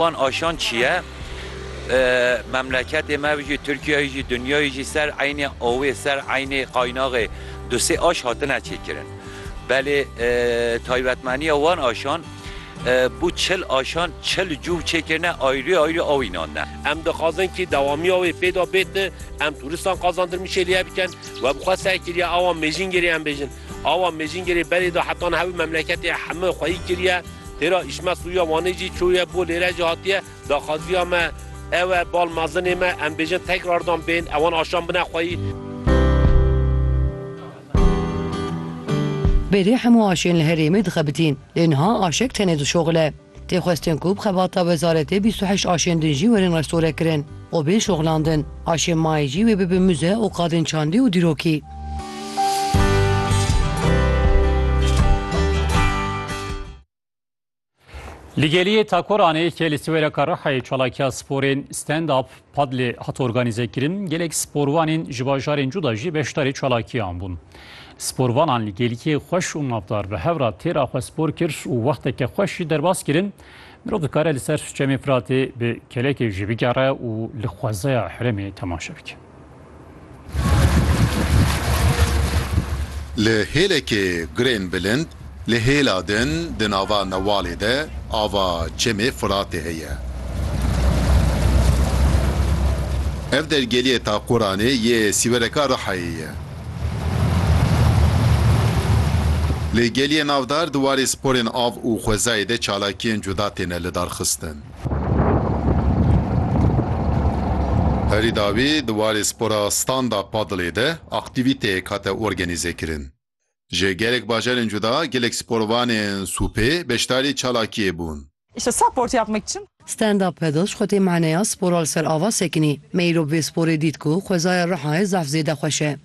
Wan aşand çiye? Memleketê me jî, Tirkiyeyê jî, dinyayê jî ser eynê awê, ser eynê qaynaxê du sê aş hatine çêkirin. Belê taybetmeniya wan aşan bû çil aşan, çil cûv çêkirine ayrî ayrî aw înandine. Em dixwazin kî dewamiya wê pê de bêt, em turistan qazandir mişê li ye bikin we bi xwe ser kiriye awa mêjîngirê em bêjin. Awa Mêjîngirê berê de hetan hewi memleketê heme xweyî kiriye. Têra Îşmet Sûya Wanê jî çûye bo lêre jî hatiye. Daxwaziya me ew e bal mezinê me em bêjin tekrar dan bên ewan aşan bine xweyî. Berê hemû aşên li herêmê dixebitîn lê niha aşek tenê dişoxile. Tê xwestin ku bi xebata wezaretê bîst û heşt aşên din jî werin restorekirin û bên şoxlandin. Aşên mayê jî wê bibin muze û qadên çandî û dîrokî. Li Geliyê Takoranê ke li Siwêreka Rihayê çalakiya sporên Stand Up Padlê hat organîzekirin, gelek sporvanên ji bajarên cuda jî beşdarî çalakiyan bûn. Sporvanan li gêlkê xweş û mafdar bi hev re têra xwe spor kir û wexteke xweş jî derbas kirin, mirov dikare li ser Çemê Firatê bi kelekê jî bigere û li xwezeya herêmê temaşe bike. Li hêlekê gurên bilind, li hêla din di nava newalê de ava Çemê Firatê heye. Ev dergehê Taquranê yê Sîwereka Rihayê ye. Li gelê navdar di warê sporên av û xwezayê de çalakiyên cuda têne lidarxistin. Herî dawî di warê spora standa padlê de aktîvîteyek hate organîzekirin. Ji gelek bajarên cuda gelek sporvanên sûpê beşdarî çalakiyê bûn. Standa padl ji xwe tê maneya spora li ser ava sekinî. Me îro bi vê sporê dît ku xwezaya Rihayê zaf zêde xweş e.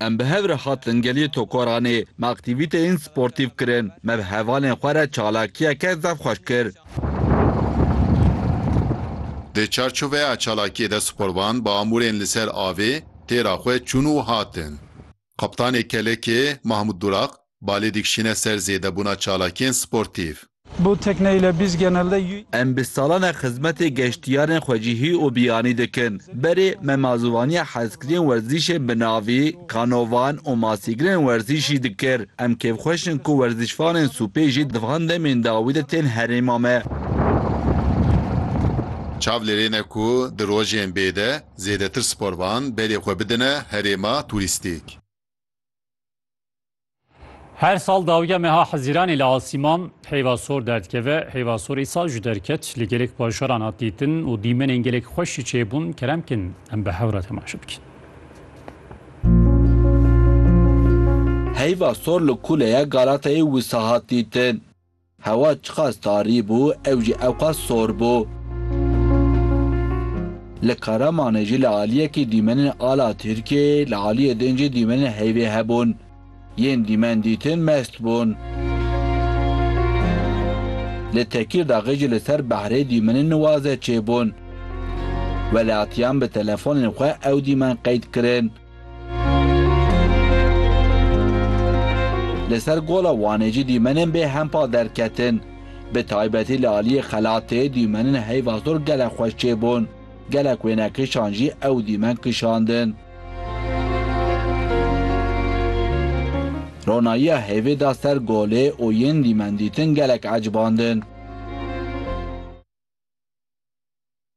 Em bi hev re hatin geliyê Tokoranê, me aktîvîteyên sportîv kirin, me bi hevalên xwe re çalakiyeke zaf xweş kir. Di çarçoveya çalakiyê de sporvan bi amûrên li ser avê têra xwe çûn û hatin. Kaptanê Kelekê, Mahmut Durak, balê dikişîne ser zêdebûna çalakiyên sportîv. Bu tekne ile biz genelde y. Em bi salan e xizmetê geştiyarên xwecihî û biyanî dikin. Berê me mazûvaniya hezkiriyên werzîşê bi navî, kanovan û masîgirên werzîşî dikir. Em kêfxweş in ku werzîşvanên sûpê jî di van demên dawî de tên herêma me. Çav lêrêne ku di rojên bê de Zêdetir sporvan berê xwe bidine herêma turîstîk. Her sal dawiya meha Hezîranê li Asîman heyva sor derdikeve. Heyva sor îsal jî derket. Li gelek bajaran hat dîtin û dîmenên gelek xweş jî çêbûn. Kerem bikin em bi hev re temaşe bikin. Heyva sor li kuleya Galatayê wisa hat dîtin. Hewa çiqas tarî bû, ew jî ewqas sor bû. Li Karamanê jî li aliyekî dîmenên ala Tirkiyeyê, li aliyê din jî dîmenên heyvê hebûn. Yên dîmen dîtin mest bûn. Li Tekîrdaxê jî li ser behrê dîmenên nuwaze çêbûn. Welatiyan bi telefonên xwe ew dîmen qeyd kirin. Li ser gola Wanê jî dîmenên bê hempa derketin. Bi taybetî li aliyê xelatê dîmenên heyva sor gelek xweş çêbûn. Gelek wêne kişan jî ew dîmen kişandin. Ronayiya hêvê da ser golê û yên dîmen dîtin gelek ecibandin.